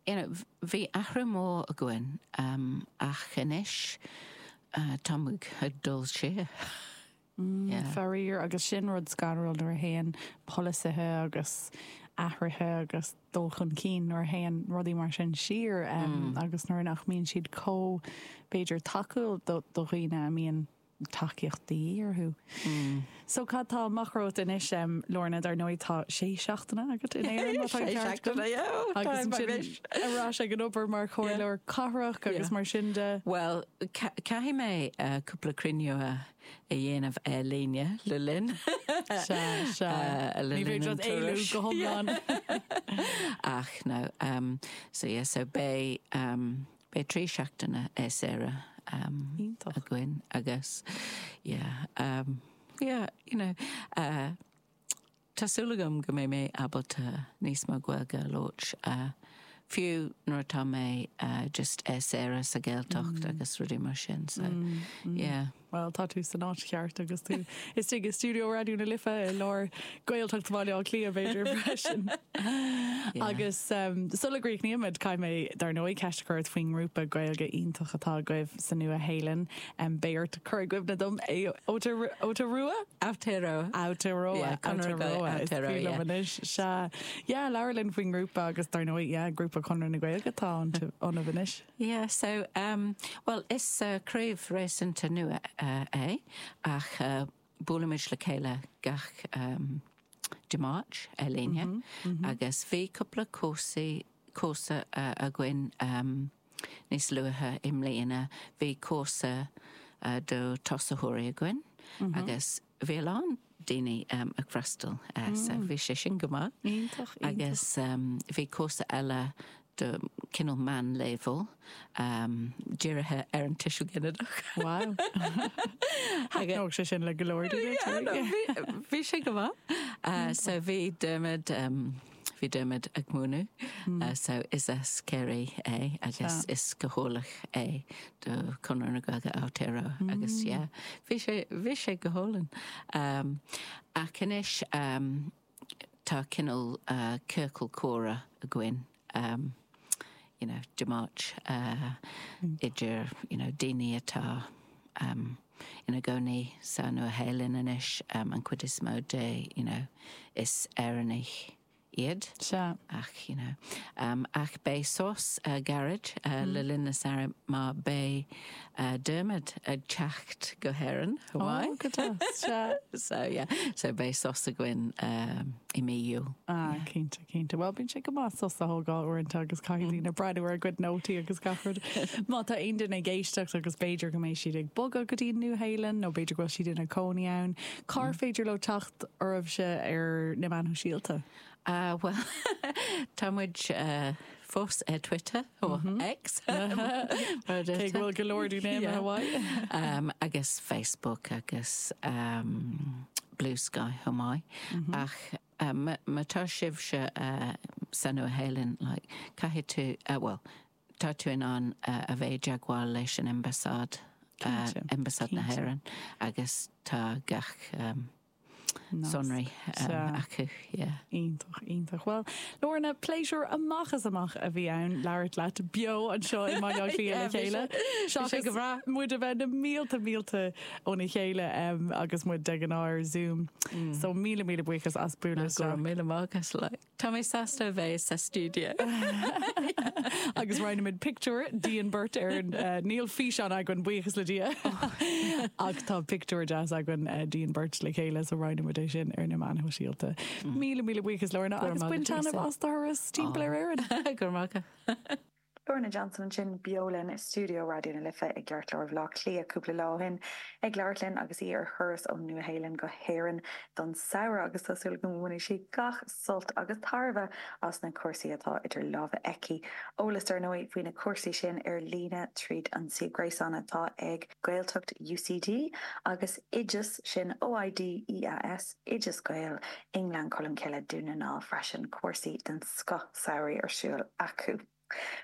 you know bhí athrú mór againn ach anois tá muid ag dul siar yeah. Faraor, agus sin rud scanrúil nuair a théann polasaithe agus athruithe agus dul chun cinn, nuair a théann rudaí mar sin siar agus nuair nach mbíonn siad chomh, b'fhéidir, tacúil do dhaoine a mbíonn tacaíochtaí orthu. So cad tá amach romhat anois Lorna, dar ndóigh tá sé seachtaine agat in Éirinn má tá an ceart agam. Sé seachtaine, yeah, time I wish. agus ar ais ag an obair mar chomhairleoir cathrach agus mar sin de. Bhuel, caithfidh mé cúpla cruinniú a dhéanamh ar líne le linn. Sea, sea. Ní féidir leat éalú go hiomlán. Ach no, so yeah, so beidh. Beidh trí seachtaine é saoire againn agus yeah yeah you know tá súil agam go mbeidh mé ábalta níos mó Gaeilge a labhairt fiú nuair atá mé just é saoire sa Gaeltacht agus rudaí mar sin so yeah. Bhuel, tá tú san áit cheart agus tú istigh i stiúideo Raidió na Life i lár Gaeltacht Bhaile Átha Cliath b'fhéidir freisin. Agus sula gcríochnaímid, caithfidh mé dar ndóigh ceist a chur ort faoin ngrúpa Gaeilge iontach atá agaibh sa Nua-Shéalainn. Beidh ort cur i gcuimhne dom é Aotearoa? Aotearoa. Aotearoa. Conradh na Gaeilge Aotearoa. Is brí liom anois. Sea. Yeah, labhair linn faoin ngrúpa agus dar ndóigh, yeah, grúpa Conradh na Gaeilge atá ionaibh anois. Yeah, so, um, well, is uh, craobh réasúnta nua uh, é, ach uh, buailimid le chéile gach um, Dé Máirt ar líne, mm -hmm, mm -hmm. agus bhí cúpla cúrsaí cúrsa uh, againn um, níos luatha i mbliana, bhí cúrsa uh, do tosaitheoirí againn, mm -hmm. agus Bhí a lán daoine ag freastal so bhí sé sin go maith. Iontach, iontach. Agus bhí cúrsa eile do cineál meánleibhéal dírithe ar an tuiseal ginideach. Wow. Thaitneodh sé sin le go leor daoine. Bhí sé go maith. So bhí Dermot. Bhí Dermot ag múineadh so is as Ciarraí é agus is cathaoirleach é do Conradh na Gaeilge Aotearoa agus yeah bhí sé bhí sé go hálainn. Ach anois tá cineál ciorcal comhrá againn you know Dé Máirt idir you know daoine atá ina gcónaí sa Nua-Shéalainn anois an chuid is mó de you know is Éireannaigh iad Sea. ach you know ach beidh sos gairid le linn na samhraidh mar beidh Dermot ag teacht go hÉireann Ó go deas sea. so yeah so beidh sos againn. i mí. Ah cinnte cinnte. Bhuel bíonn sé go maith sos a thógáil uaireanta agus caithfidh daoine breathnú ar a gcuid nótaí agus gach rud. Má tá aon duine ag éisteacht agus b'fhéidir go mbeidh siad ag bogadh go dtí an Nua Shéalainn nó b'fhéidir go bhfuil siad ina cónaí ann, cá háit ar féidir leo teacht oraibhse ar na Meáin Shóisialta? Ah bhuel tá muid fós ar Twitter nó X mar a thugtar. Cé go bhfuil go leor daoine amuigh abhaile. Agus Facebook agus Bluesky chomh maith. Ach má tá sibhse sa Nua Shéalainn, like, caithfidh tú, eh, bhuel, tá tú in ann a bheith i dteagmháil leis an Ambasáid, Ambasáid na hÉireann agus tá gach, em, sonraí acu. Yeah. Iontach, iontach. Bhuel, Lorna, pléisiúr amach is amach a bhí ann labhairt leat beo anseo i mBaile Átha Cliath le chéile. Seachas go bhreá. muid a bheith na mílte, mílte óna chéile em, agus muid de ghnáth ar Zoom. So míle, míle buíochas as bualadh isteach. Go raibh míle maith agat, like. Tá mé sásta a bheith sa stiúideo. agus roinnfimid pictiúr dínn beirt ar an, eh, níl físeán againn, buíochas le Dia, ach tá pictiúr deas againn, eh, Dínn beirt le chéile is roinnfimid é sin ar na meáin shóisialta. Míle míle buíochas Lorna agus bain taitneamh as do thuras timpeall ar Éirinn. Go raibh maith agat. Lorna Johnson ansin beo linn i stiúideo Raidió na Life i gceartlár Bhleá Cliath cúpla lá ó shin ag labhairt linn agus í ar thuras ón Nua-Shéalainn go hÉirinn don samhradh agus tá súil agam go mbainfidh sí gach sult agus tairbhe as na cúrsaí atá idir lámha aici. Eolas dar ndóigh faoi na cúrsaí sin ar líne tríd an suíomh gréasáin atá ag Gaeltacht UCD agus Oideas, sin OID EAS, Oideas Gael, i nGleann Cholm Cille, Dún na nGall freisin, cúrsaí den scoth samhraidh ar siúl acu.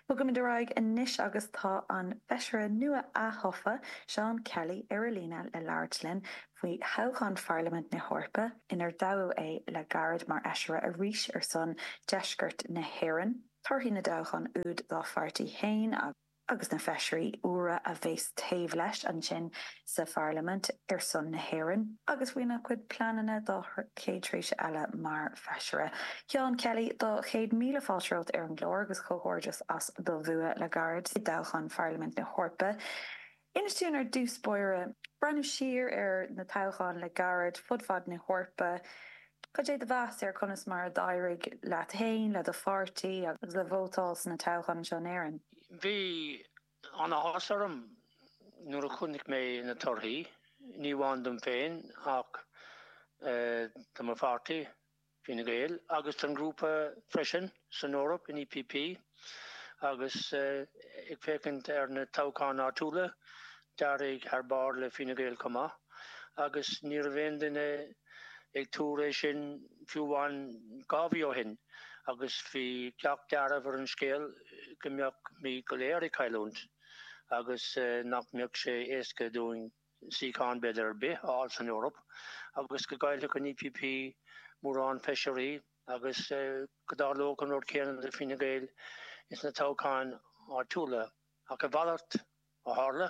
Bogaimid ar aghaidh anois agus tá an Feisire nua ath-thofa, Seán Kelly, ar a líne le labhairt linn faoi thoghchán Pharlaimint na hEorpa, inar dtoghadh é le gairid mar Fheisire arís ar son Deisceart na hÉireann, torthaí na dtoghchán úd dá pháirtí fhéin agus. agus na Feisirí úra a bheas taobh leis ansin sa Pharlaimint ar son na hÉireann, agus faoina chuid pleananna dá chéad tréimhse eile mar Feisire. Seán Kelly, tá céad míle fáilte romhat ar an gclár agus comhghairdeas as do bhua le gairid i dtoghchán Pharlaimint na hEorpa. Inis dúinn ar dtús báire, ag breathnú siar ar na toghcháin le gairid fud fad na hEorpa, Cad é do mheas ar chonas mar a d'éirigh leat fhéin, le do pháirtí agus le vótáil sna toghcháin anseo in Éirinn? Bhí an-áthas orm nuair a chonaic mé na torthaí, ní amháin dom féin ach do mo pháirtí, Fine Gael, agus don ghrúpa freisin. san Eoraip, an EPP, agus ag féachaint ar na toghcháin áitiúla, d'éirigh thar barr le Fine Gael chomh maith, agus ní raibh aon duine ag tuar é sin fiú amháin dhá mhí ó shin, agus bhí gach dealramh ar an scéal go mbeimís go léir ag cailliúint, agus nach mbeadh sé éasca dúinn suíochán b'fhéidir ar bith a fháil san Eoraip agus go gcaillfeadh an EPP mórán feisirí agus go dtarlódh an rud céanna do Fine Gael ins na toghcháin áitiúla. Ach a mhalairt a tharla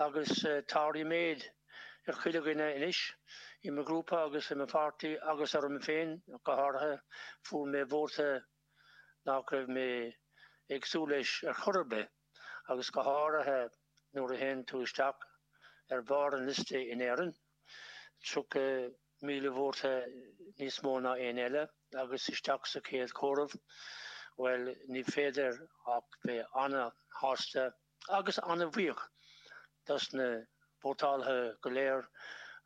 agus tá ríméad ar chuile dhuine anois, i mo ghrúpa agus i mo pháirtí agus orm féin go háirithe, fuair mé vóta nach raibh mé ag súil leis ar chor ar bith. agus go háirithe nuair a théann tú isteach ar bharr an liosta in Éirinn, 30,000 vóta níos mó ná éinne eile, agus isteach sa chéad chomhaireamh, bhuel, ní féidir ach bheith ana-shásta agus ana-bhuíoch dos na vótálaithe go léir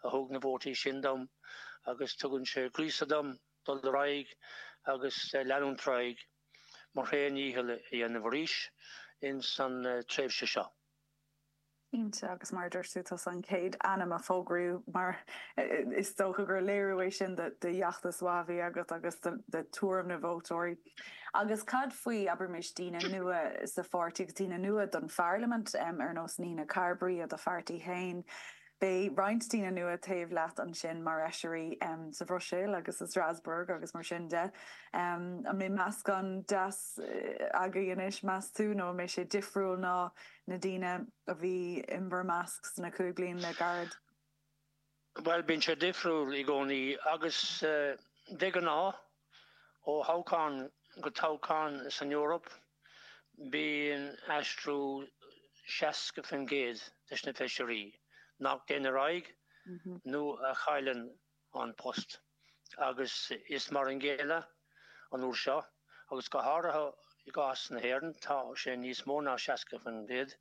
a thug na vótaí sin dom agus tugann sé gríosadh dom dul ar aghaidh agus leanúint ar aghaidh. mo sheacht ndícheall a dhéanamh arís ins an tréimhse seo. Cinnte, agus mar a dúirt tú, tusa an chéad ainm a fógraíodh mar is dócha gur léiriú é sin de fheachtas mhaith a bhí agat agus de thuairim na vótóirí. Agus cad faoi, abraimis, daoine nua sa pháirtí agus daoine nua don pharlaimint, ar nós Nina Carberry ó do pháirtí féin? Beidh roinnt daoine nua taobh leat ansin mar fheisirí sa Bhruiséil agus i Strasbourg agus mar sin de. An mbeidh meascán deas agaibh anois meas tú nó an mbeidh sé difriúil ná na daoine a bhí in bhur measc sna cúig bliana le gairid? Bhuel, bíonn sé difriúil i gcónaí agus de ghnáth. Ó thoghchán go toghchán san Eoraip bíonn aistriú 60% des na feisirí nach dtéann ar aghaidh nó a chailleann an post agus is mar an gcéanna an uair seo agus go háirithe i gcás na hÉireann tá sé níos mó ná 60%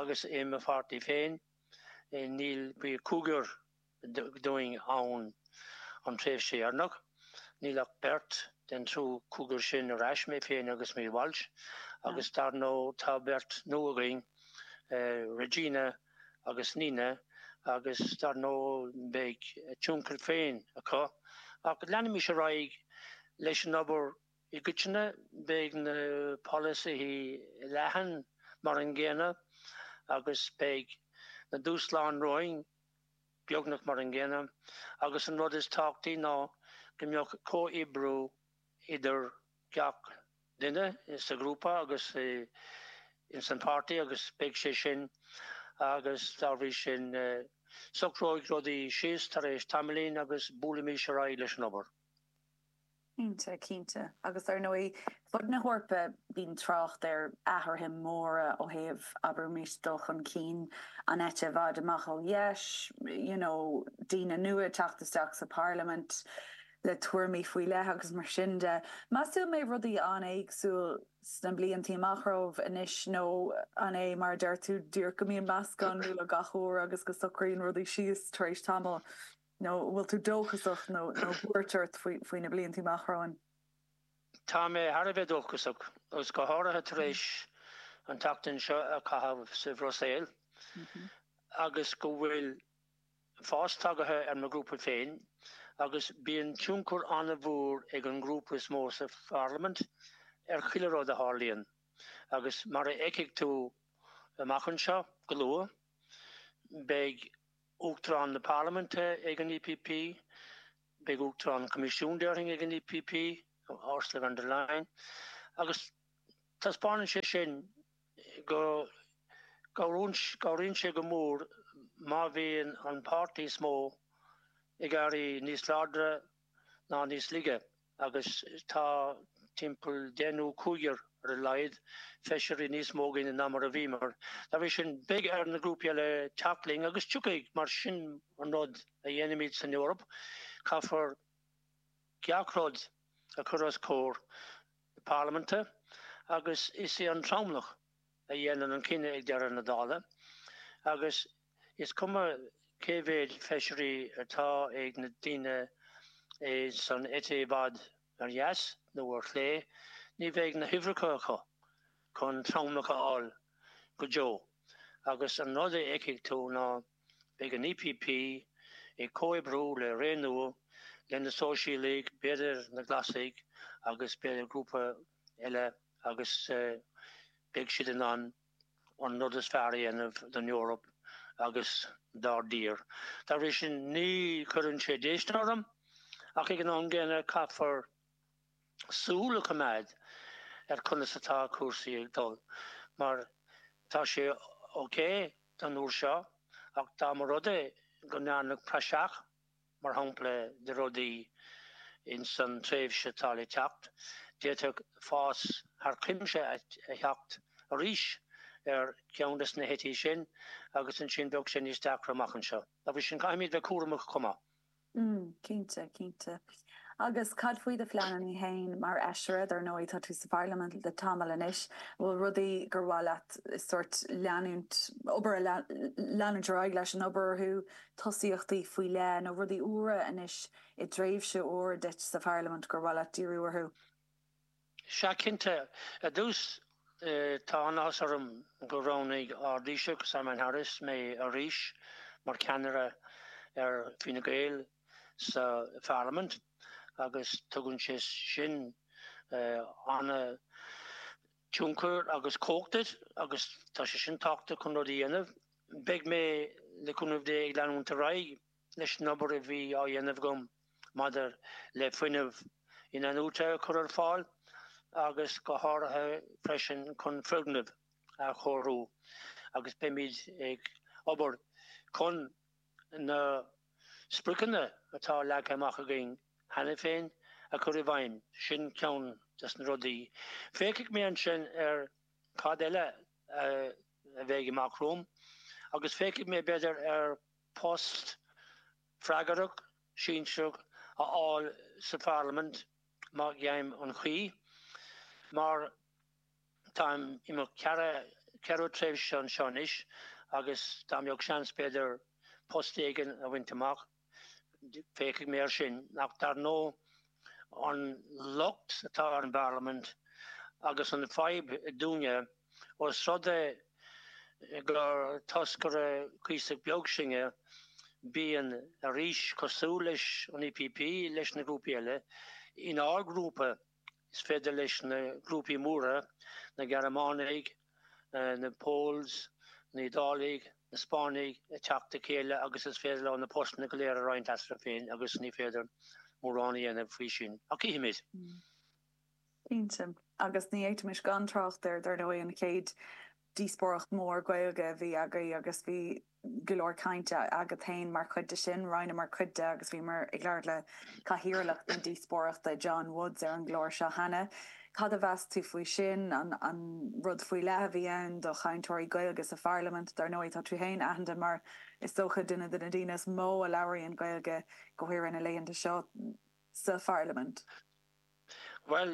agus i mo pháirtí féin bhí cúigear dínn ann an tréimhse dheireanach. Níl ach beirt den triú cúigear sin ar ais, mé féin agus Maria Walsh, agus dar ndóigh tá beirt nua againn, Regina agus Nina, agus dar ndóigh beidh tionchar féin acu. Ach leanfaimid ar aghaidh leis an obair i gcoitinne, beidh na polasaithe leathan mar an gcéanna agus beidh na dúshláin romhainn. beagnach mar an gcéanna, agus an rud is tábhachtaí ná go mbeadh comhoibriú idir gach duine sa ghrúpa agus ins an páirtí agus beidh sé sin agus dá bhrí sin socróidh rudaí síos tar éis tamaillín agus buailfimid ar aghaidh leis an obair. Cinnte, cinnte. Agus ar ndóigh, fud na hEorpa bíonn trácht ar athruithe móra ó thaobh, abraimis, dul chun cinn an eite i bhfad amach ó dheis, you know, daoine nua ag teacht isteach sa bparlaimint le tuairimí faoi leith agus mar sin de. Meas tú an mbeidh rudaí an-éagsúil sna bliantaí amach romhaibh anois nó an é mar a deir tú díreach go mbíonn meascán nua gach uair agus go socraíonn rudaí síos tar éis tamaill? Nó an bhfuil tú dóchasach nó buairt ort faoi na blianta amach romhainn? Tá mé thar a bheith dóchasach, agus go háirithe tar éis an tseachtain seo a chaitheamh sa Bhruiséil, agus go bhfuil fás tagaithe ar mo ghrúpa féin, agus bíonn tionchar an-mhór ag an ngrúpa is mó sa Pharlaimint ar chuile rud a tharlaíonn, agus mar a fheicfidh tú amach anseo go luath, beidh Uachtarán na Parlaiminte ag an EPP, beidh Uachtarán an Choimisiúin, déarfainn, ag an EPP, Ursula von der Leyen, agus taispeánann sé sin go gcabhraíonn sé go mór má bhíonn an páirtí is mó ag éirí níos láidre, ná níos laige agus tá timpeall deichniúr, cúigear ar a laghad feisirí níos mó againn ná mar a bhí. Dá bhrí sin beidh ar na grúpaí eile teacht linn agus tiocfaidh. Mar sin an rud a dhéanaimid san Eoraip, caithfear gach rud a chur os comhair na Parlaiminte agus is é an tromlach, a dhéanann an cinneadh ag deireadh na dála agus is cuma cé mhéid feisirí atá ag na daoine san eite i bhfad ar dheas nó ar chlé, ní bheidh na huimhreacha acu chun tromlach a fháil go deo agus an rud a fheicfidh tú ná beidh an EPP ag comhoibriú le Renew, le na Sóisialaigh, b'fhéidir na Glasaigh agus b'fhéidir grúpa eile agus beidh siad in ann an rud is fearr a dhéanamh don Eoraip agus dár dtír. Dá bhrí sin ní chuireann sé déistin orm ach ag an am gcéanna caithfear súil a choimeád ar conas atá cúrsaí ag dul mar tá sé ok don uair seo ach dá mba rud é go ndearnadh praiseach mar shampla do rudaí ins an tréimhse atá le teacht, d'fhéadfadh fás thar cuimse a theacht arís ar cheann de sna heití sin agus ansin bheadh sé níos deacra amach anseo. Dá bhrí sin, caithfimíd a bheith cúramach chomh maith. Mm, cinnte, cinnte. Agus cad faoi do phleanannaí fhéin mar Fheisire? Dár ndóigh tá tú sa Pharlaimint le tamall anois, an bhfuil rudaí gur mhaith leat sort leanúint, obair a leanúint ar aghaidh leis an obair orthu tosaíochtaí faoi leith nó rudaí úra anois i dtréimhse úr duit sa Pharlaimint gur mhaith leat díriú orthu? Sea, cinnte. Ar dtús, tá an-áthas orm gur roghnaigh ár dTaoiseach, Simon Harris, mé arís mar cheannaire ar Fine Gael sa Pharlaimint agus tugann sé sin ana- tionchar agus cumhacht duit agus tá sé sin tábhachtach chun rudaí a dhéanamh. Beidh mé, le cúnamh Dé, ag leanúint ar aghaidh leis an obair a bhí á dhéanamh agam maidir le fuinneamh inathnuaite a chur ar fáil agus go háirithe freisin chun foirgnimh a chóiriú agus beimid ag obair chun na spriocanna atá leagtha amach againn cheana féin a chur i bhfeidhm, sin ceann des na rudaí. Féachfaidh mé ansin ar cad eile a bheidh amach romham agus féachfaidh mé b'fhéidir ar post freagrach, sinsearach a fháil sa Pharlaimint má gheibhim an chaoi, mar, Táim i mo cheathrú tréimhse anseo anois agus dá mbeadh seans b'fhéidir post éigin a bhaint amach féachfaidh mé air sin ach dar ndóigh an locht atá ar an bParlaimint agus an fhadhb dúinne ós rud é gur toscaireacht cuíosach beag sinne bíonn arís cosúil leis an EPP leis na grúpaí eile inár grúpa. Is féidir leis na grúpaí móra, na Gearmánaigh, na Poles, na hIodálaigh, na Spáinnigh, a theacht le chéile agus is féidir leo na postanna go léir a roinnt eatarthu féin agus ní féidir mórán a dhéanamh faoi sin. Ach chífimid. Cinnte. Agus ní fhéadfaimis gan trácht air, dar ndóigh, an chéad Díospóireacht mhór Gaeilge a bhí agaibh agus bhí go leor cainte agat féin mar chuid de sin. Roinneamar cuid de agus bhíomar ag labhairt le cathaoirleach na díospóireachta, Seán Woods, ar an gclár seo cheana. Cad a mheas tú faoi sin? An rud faoi leith a bhí ann do chainteoirí Gaeilge sa Pharlaimint? Dar ndóigh, tá tú féin aitheanta mar, is dócha, duine de na daoine is mó a labhraíonn Gaeilge, go háirithe na laethanta seo, sa Pharlaimint. Bhuel,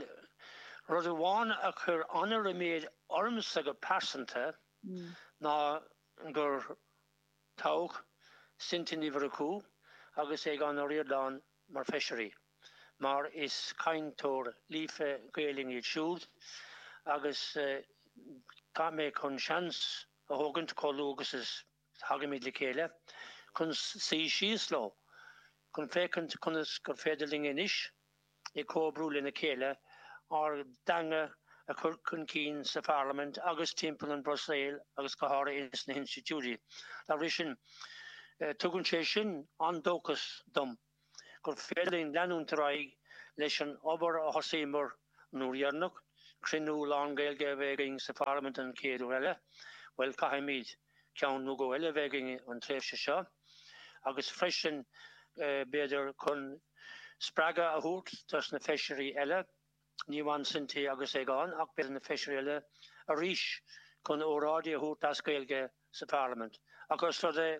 rud amháin a chuir an-riméad ormsa go pearsanta ná gur toghadh Cynthia Ní Mhurchú agus Aogán Ó Ríordáin mar Feisirí mar is cainteoirí líofa Gaelinne iad siúd agus tá mé chun seans a thógaint chomh luath agus is Tagaimíd le chéile chun suí síos leo, chun féachaint conas gur féidir linn anois, ag comhoibriú lena chéile, ár dteanga a chur chun cinn sa Pharlaimint agus timpeall an Bhruiséil agus go háirithe ins na hinstitiúidí. Dá bhrí sin, tugann sé sin an-dóchas dom. gur féidir linn leanúint ar aghaidh leis an obair a thosaíomar an uair dheireanach, cruinniú lán Gaeilge a bheith againn sa Pharlaimint an chéad uair riamh, bhuel caithfimíd ceann nó dhó eile a bheith againn an tréimhse seo, agus freisin b'fhéidir chun spreagadh a thabhairt dos na feisirí eile, ní amháin Cynthia agus Aogán ach b'fhéidir na feisirí eile arís chun óráidí a thabhairt as Gaeilge sa Pharlaimint. Ach os rud é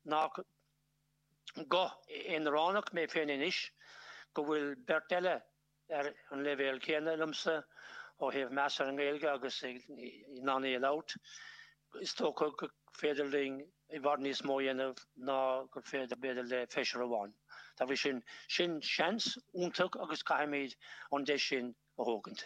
nách. guth aonaránach mé féin anois go bhfuil beirt eile ar an leibhéal céanna liomsa ó thaobh meas ar an nGaeilge agus in ann í a labhairt. Is dócha gur féidir linn i bhfad níos mó a dhéanamh ná gur féidir b'fhéidir le feisire amháin. Dá bhrí sin, sin seans iontach agus caithfimíd an deis sin a thógaint.